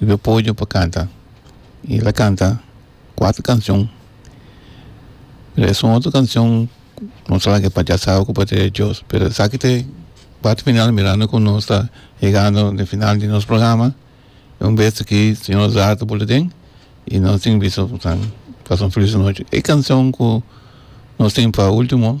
Rubio Pollo pa canta y el a canta cuatro cancion pero esun otro cancion nos a laga pachá sa ocupa ta e dios pero esaki ta e parti final mirando como nos ta yegando den final di nos programa y un bes aki señor Azar ta boli den y nos tin bisto pasobra un feliz nochi e cancion cu nos tin pa ultimo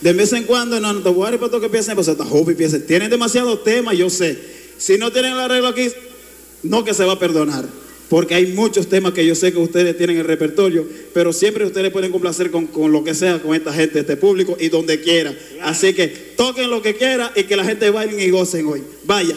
De mes en cuando no no ta worry pa toca pies nepa, so ta hopi pies e tienen demasiado tema yo se si no tienen el arreglo aki no que se va perdonar porque hay muchos tema que yo se que ustedes tienen el repertorio pero siempre ustedes pueden complacer con con loke sea con esta gente este publico y donde quiera asi que toquen loke quiera y que la gente bailen y gocen hoy vaya.